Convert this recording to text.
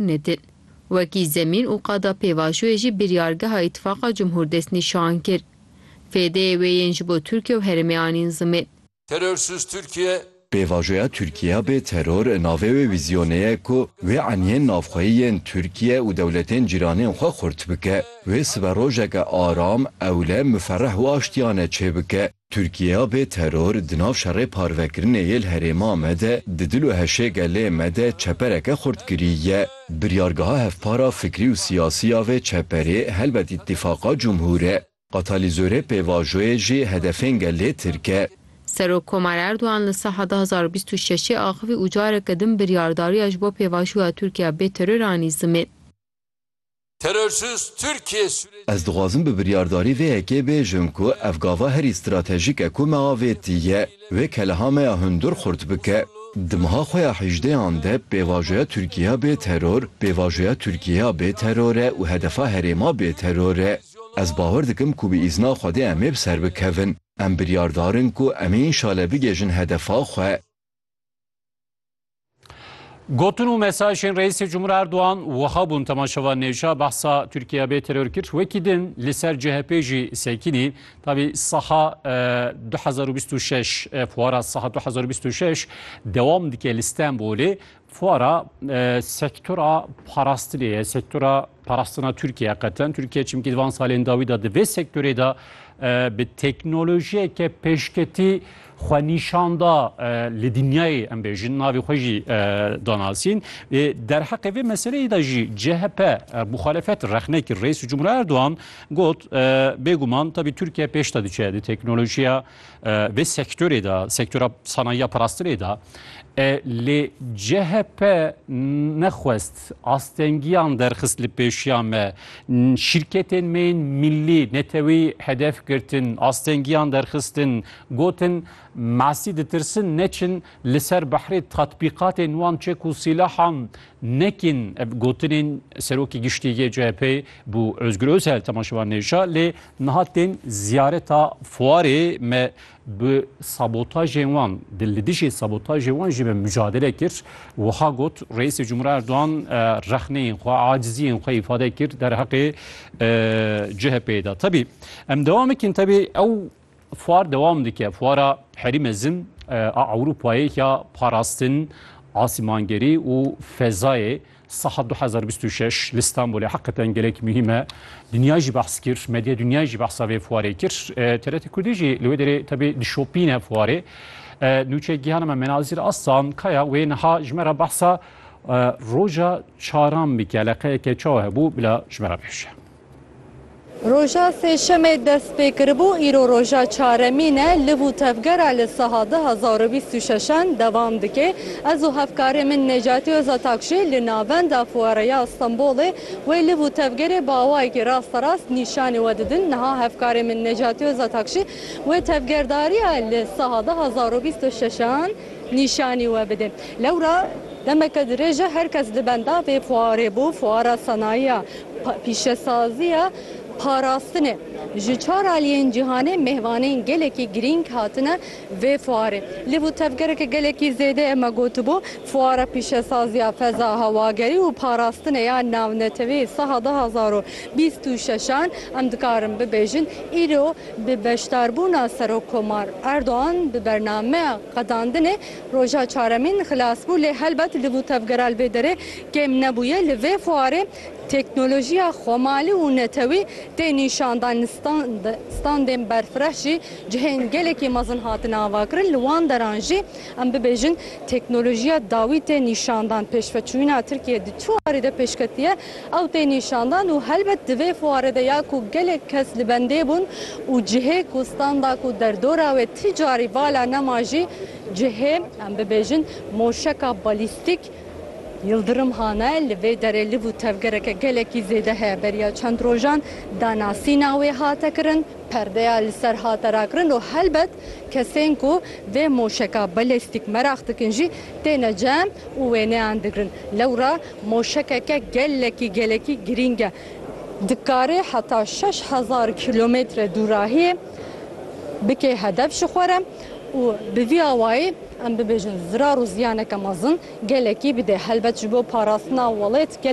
nedin. Wekî zemîn û qada pêvajoyê jî biryargeha Îtîfaqa Cumhur destnîşan kir. Fêdeyê wê yên ji bo Tirkiye û herêmê anîn zimên. Terörsüz Türkiye. Pêvajoya Tirkiya bê teror navê wê vîzyonê ye ku wê eniyên navxweyî yên Tirkiye û dewletên cîranên xwe xurt bike. Wê siberojeke aram, ewle, miferreh û aştiyane çêbike. Tirkiyeya bê teror di nav şerê parvekirinê yê li herêma me de di dil û heşê gelê me de çepereke xurt kirî ye. Biryargeha hevpara fikrî û siyasî ya vê çeperê helbet Îtîfaqa Cumhur e. Qatalizorê pêvajoyê jî hedefên gelê tirk e. Serokkomar Erdogan li Saha du hezar û bîst û şeşê axivî û careke din biryardariya ji bo pêvajoya Tirkiyeya bê teror anî zimên. Terorist Tirkiyê Sûriyê Ez dixwazim bi biryardarî vê yekê bêjim ku ev gava herî stratejîk e ku me avêtiye wê keleha me ya hundir xurt bike. Di meha xwe ya hîjdêyan de pêvajoya Tirkiyeya bê teror, pêvajoya Tirkiyeya bê teror e û hedefa herêma bê teror e. Ez bawer dikim ku bi îzna Xwedê em ê bi ser bikevin. Em biryardar in ku em ê înşale bigêjin hedefa xwe. Gotin û mesajên Reîsê Cumhur Erdogan wiha bûn temaşevan nêşa behsa Tirkiye bê teror kir. Wekî din li ser CHP jî sekînî tabî saha 2026 e, fuara saha 2026 dewam dike li Stenbolê Fuara sektora parastinê ye, sektora parastina Tirkiye qeten. Tirkiye çimkî di van salên dawî de di vê sektorê de bi teknolojiyeke pêşketî xwe nîşan da li dinyayê em bêjin navê xwe jî danasîn. Derheqê vê meseleyê de jî CHP muxalefet rexne kir Reis Cumhur Erdoğan got bêguman tabî Tirkiye pêş de diçe di teknolojiya Vê sektorê de sektora sanayiya parastinê de lê CHP nexwest astengiyan derxist li pêşiya me şîrketên me yên millî netewî hedef girtin astengiyan derxistin gotin masî ditirsin neçin li ser behrê tatbîqatên wan çek û sîlahan Nekîn ev gotinên Serokê Giştî yê CHP'ê bû Ozgur Ozel temaşevan nêşa lê niha tên ziyareta fuarê me bi sabotajên wan di li dijî sabotajê wan jî me mucadele kir. Wiha got Reîsê Cumhura Erdogan rexneyên xwe aciziyên xwe îfade kir derheqê CHP'ê de. Tebî em dewam bikin tebî ew Fuar dewam dike. Fuara herî mezin a Ewropayê ya parastin, asîmangerî û fezayê Saha 2026 li Stenbolê heqeten gelek muhîm e. Dinya jî behs kir, medya dinya jî behsa vê fuarê kir. TRT Kurdî jî li wê derê tevê dişopîne fuarê. Nûçe Gihan me Menazîr Aslan Kaya wê niha ji me re behsa roja çaran bike. Leqeyeke çawa hebû bila ji me re bihişe. Roja sêşemê dest pê kiribû, îro roja çaremîn e. Liv û tevgera li saha du hezar û bîst û şeşan dewam dike. Ez û hevkarê min Necati Ozatak jî li navenda Fuareya Stenbolê wê liv û tevgerê bi awayekî rasterast nîşanî we didin. Niha hevkarê min Necati Ozatak jî wê tevgerdariya li saha du hezar û bîst û şeşan nîşanî we bide. Lewra demeke dirêj e her kes li benda vê fuarê bû. Fuara Senayiya Pîşesaziya parastinê, ji çar aliyên cîhanê mêvanên gelekî girîng hatine vê fuarê. Lê bû tevgereke gelekî zêde e, me gotibû fuara pîşesaziya feza, hewagerî û parastinê ya navneteweyê saha du hezar û bîst û şeş an em dikarin bibêjin îro bi beşdarbûna Serokkomar Erdogan bi bernameya qedandinê, Roja çaremîn xilas bû lê helbet li bû tevgera li vê derê kêm nebûye. Li vê fuarê teknolojiya xwemalî û netewî tê nîşandan. Li stand standên berfireh jî cihên gelekî mezin hatine avakirin. Li wan deran jî em bibêjin teknolojiya dawî tê nîşandan. Pêşveçûyîna Tirkiyeyê di çi warî de pêşketiye? Ew tê nîşandan û helbet di vê fuarê de ya ku gelek kes li bendê bûn û cihê ku standa ku derdora wê ti carî vala nema jî cihê em bibêjin moşeka balîstîk Yildirim Han e. Li vê derê liv û tevgereke gelekî zêde heye. Beriya çend rojan danasîna wê hate kirin, perdeya li ser hate rakirin û helbet kesên ku vê moşeka balîstîk meraq dikin jî têne cem û wêneyan digrin. Lewra Moşekeke gelekî gelekî girîng e. Dikarê heta şeş hezar kîlometre dûrahiyê bike hedef ji xwe re û bi vî awayî em bibêjin zirar û ziyaneke mezin gelekî bide. Helbet ji bo parastina welêt gelekî